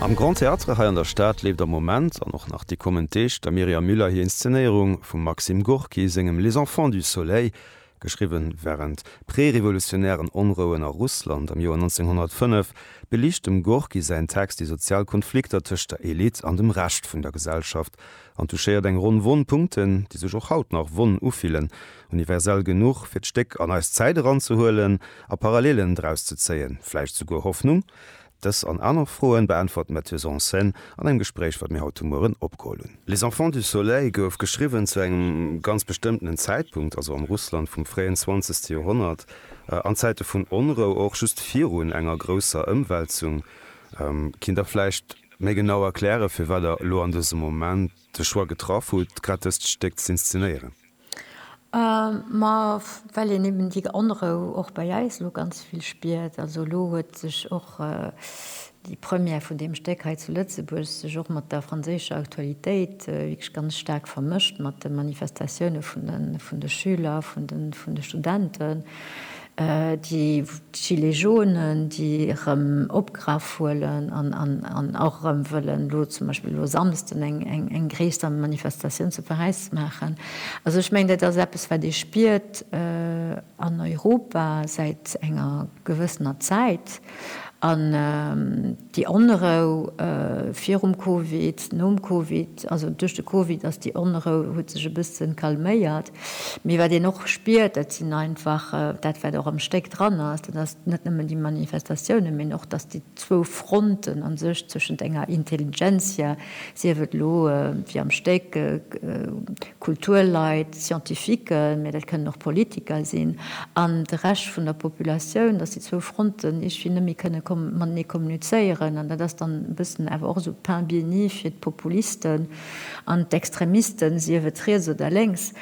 Am Grand Théâtre hei an der Stad leeft am Moment an och nach déi kommend Deeg der Myriam Müller hir Inszenéierung vum Maxim Gorki sengem Les enfants du soleil, geschriwwe wärend prerevolutionären Onrouen a Russland am Joer 1905, beliicht dem Gorki säin Text déi sozial Konflikter tëscht der Elite an dem Rescht vun der Gesellschaft. an touchéiert eng Ronn Wonn Punkten, déi sech och haut nach Wonn ufillen, universell genuch fir d'Stéck an eis Zäit eranzehuelen a Parallelen draus ze zéien, vläicht souguer Hoffnung? Dës an aner Froen beäntwert d'Metteuse en scène an engem Gespréich, wat mir haut de Mueren opgeholl hunn. Les enfants du soleil gouf geschriwwen zu engem ganz bestëmmtenen Zäitpunkt, also am Russland vum fréien zwanzegste Joerhonnert, an Zäite vun Onrou, och just virun enger grousser Ëmwälzung. Kinnt der vläicht. Méi genau erklären, firwat Der elo an dësem Moment de Choix getraff hutt, grad dëst Stéck z'inszenéieren? Ma well een eben déi Onrou och bei eis elo ganz vill spiert. Also elo huet sech och déi Première vun deem Stéck hei zu Lëtzebuerg sech och mat der franséischer Aktualitéit wierklech ganz staark vermëscht, mat de Manifestatioune vun de Schüler, vun de Studenten. Déi Gilets jaunen, déi erëm opgraff huelen an och erëm wëllen elo zum Beispill elo e Samsden eng gréisser Manifestatioun zu Paräis maachen. Also ech mengen, dat ass eppes, wat ee spiert an Europa säit enger gewëssener Zäit. An déi Onrou virum Covid, nom Covid, also duerch de Covid ass déi Onrou, huet sech e bësse calméiert. Mee wat een och spiert, dat sinn einfach, dat wat och am Stéck dran ass, dat ass net nëmmen déi Manifestatiounen, mee och datt déi zwou Fronten a sech zwëschent enger Intelligentsia, sief et elo wéi am Stéck Kulturleit, Scientifiquen, mee dat kënnen och Politiker sinn, an de Rescht vun der Populatioun, datt déi zwou Fronten iergendwéi net méi kënne matenee kommunizéieren. An dat ass dann e bëssen awer och esou Pain béni fir d'Populisten. An d'Extremisten, sief et riets oder lénks,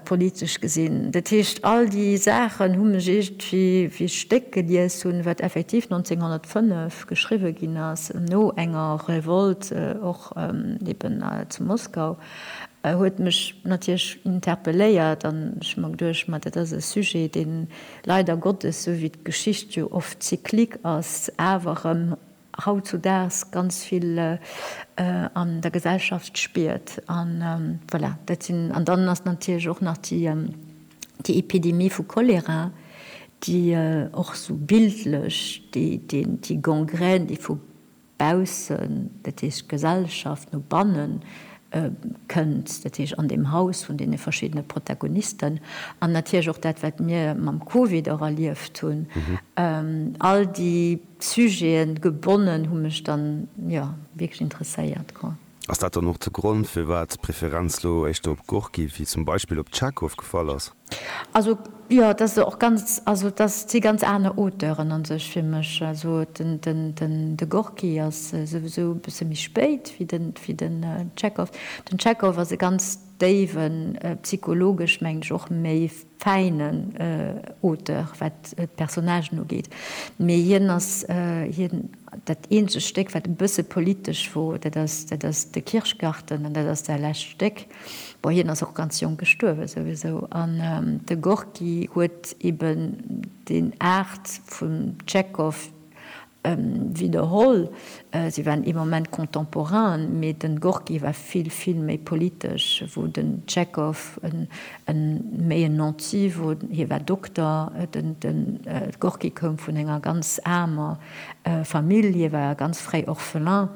politesch gesinn. Dat heescht, all déi Saachen hu mech iergendwéi wéi ech d'Stéck gelies hunn, wat effektiv 1905 geschriwwe ginn ass, no enger Revolt och eben zu Moskau, huet mech natierlech interpelléiert. An ech hu mer geduecht, ma dat ass e Sujet, dee leider Gottes, sou wéi d'Geschicht jo oft cyclique ass, awer erëm hautzudaags ganz vill an der Gesellschaft spiert an voilà dat sinn. An dann ass natierlech och nach déi déi Epidemie vu Cholera, déi och esou bildlech déi deen déi Gangrène déi vu baussen, dat heescht d'Gesellschaft, no banne kënnt, dat heescht an deem Haus vun deene verschiddene Protagonisten. An natierlech och dat wat mir mam Covid och erlieft hunn, all déi. Sujeten gebonnen hu mech dann jo wierklech interesséiert, quoi. Ass dat dann och de Grond firwat d'Preferenz lo éischter op Gorki wéi zum Beispill op Tschechow gefall ass? Also jo, dat ass och ganz, also dat si ganz aner Auteuren an sech fir mech. Also de Gorki ass souwisou e bësse méi spéit wéi den Tschechow. Den Tschechow ass e ganz déiwen, psychologesch mengen ech och méi fäinen Auteur, wat d'Personnagen ugeet, mee hien ass hien. Dat eenzegt Stéck, wat e bësse politesch wor, dat ass, dat ass de Kirschgarten, an dat ass säi lescht Stéck. Bon, hien ass och ganz jonk gestuerwe souwisou. An de Gorki huet eben deen Aart vum Tschekhov Widderholl, si waren ee Moment contemporain, mee den Gorki war vill, vill méi politesch, wou den Tschekhov méi en Nanti wor, hie war Dokter. Den Gorki koum vun enger ganz aarmer Famill, hie war ganz fréi Orphelin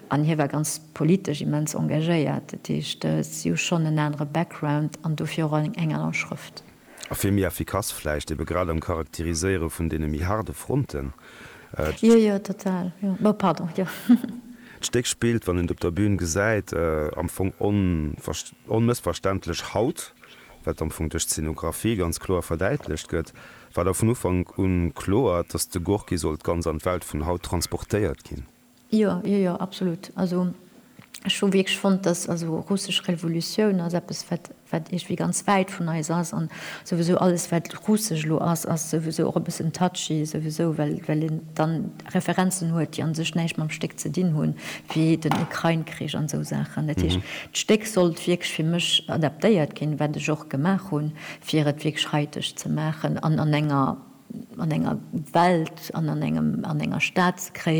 an hie war ganz politesch immens engagéiert. Dat heescht, si hu schonn en anere Background an dofir och eng aner Schrëft. A vill méi effikass vläicht, ebe grad am Charakteriséiere vun deene méi haarde Fronten. D'. Jo, jo, total, jo. Bon, pardon, jo. D'Stéck spillt, wann een et op der Bün gesäit, am Fong onmëssverständlech haut, wat am Fong duerch d'Szenografie ganz kloer verdäitlecht gëtt. War da vun Ufank un kloer, dass de Gorki sollt ganz an d'Welt vun haut transportéiert ginn? Jo, jo, jo, absolut. Also ech hu wierklech fonnt, dass, also russesch Revolutioun ass eppes, wat, wat iergendwéi ganz wäit vun eis ass. An souwisou alles, wat russesch elo ass, ass souwisou och e bëssen touchy, souwisou well, well een dann Referenzen huet, déi a sech näischt mam Stéck ze dinn hunn, wéi den Ukrain-Krich an esou Saachen. Dat heescht, d'Stéck sollt wierklech fir mech adaptéiert ginn, wat ech och gemaach hunn, fir et wierklech haiteg ze maachen an an enger, an enger Welt an an engem, an enger Stad ze kréien,